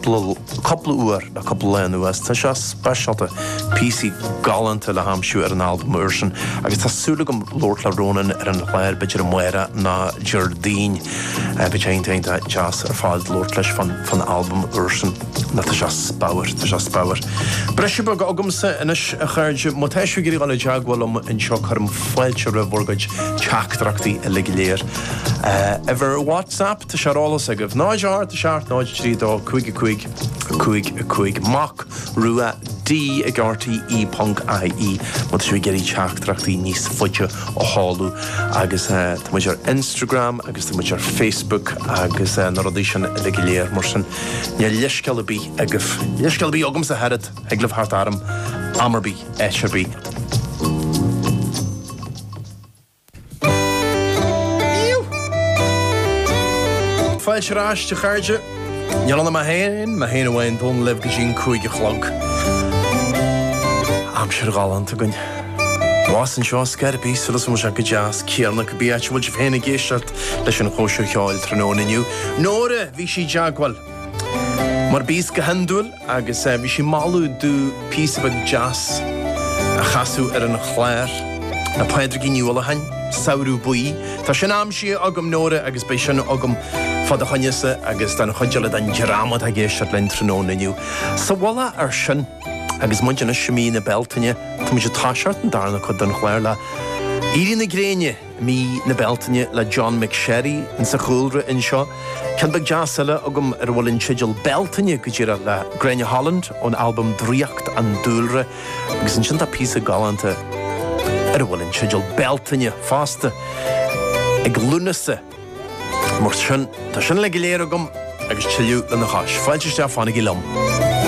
Dlúth cúpla uair le cúpla lá anuas, tá seo speisialta, píosaí galánta le haimsiú ar an albam úr sin agus tá súil agam labhairt le Ronan ar an chlár b'fheidir amárach nó Déardaoin. Beidh sé iontach deas ar fad labhairt leis fán albam úr sin. Ná tá seo spaper, tá seo spaper. Briseadh beag agamsa anois a chairde, má tá sibh ag iarraidh dul i dteagmháil liom anseo cuirim fáilte roimh bhur gcuid teachtaireachtaí uilig go léir. Uimhir WhatsApp? Tá sé ar eolas agaibh. 0 8 7 0 3 2 5 5 5 5 Mac Rua D ag RTE punk IE má tá sibh ag iarraidh teachtaireachtaí níos faide a sheoladh agus tá muid ar Instagram agus tá muid ar Facebook agus na rudaí sin uilig go léir mar sin níl leithscéal ar bith agaibh. Leithscéal ar bith agamsa a oiread, thig libh teacht orm am ar bith, áit ar bith. Fáilte ar ais a chairde. Ronan Mac Aodha Bhuí anseo libh go dtí an cúig a chlog. Aimsir ghalánta againn. thuas anseo i gCairbre, tá súil agam go bhfuil sé go deas, céanna cibé áit a bhfuil sibh féin ag éisteacht leis an chóisir cheoil tráthnóna inniu. Nóra, bhí sí i dteagmháil. Mar bhíos go hiondúil. agus bhí sí ag moladh domh píosa beag deas a chasadh ar an chlár. Pádraigín Ní Uallacháin, Samhradh Buí. Tá sin aimsithe agam, Nóra, agus beidh sin agam fá do choinne-sa agus don chuid eile den dream atá ag éisteacht linn tráthnóna inniu. Sa mhullach ar sin, agus muid anois i mí na Bealtaine, tá muid ag toiseacht an darna cuid den chlár le Éirí na Gréine. mí na Bealtaine le John McSherry in sa chúlra in seo. Ceann beag deas eile agam ar a bhfuil an teideal Bealtaine go díreach le Gráinne Holland ón albam Draíocht an Dúlra agus ansin tá píosa galánta ar a bhfuil an teideal Bealtaine fosta ag Lúnasa. Mar sin tá sin uilig go léir agam agus tuilleadh lena chois. Fáilte isteach fanaigí liom.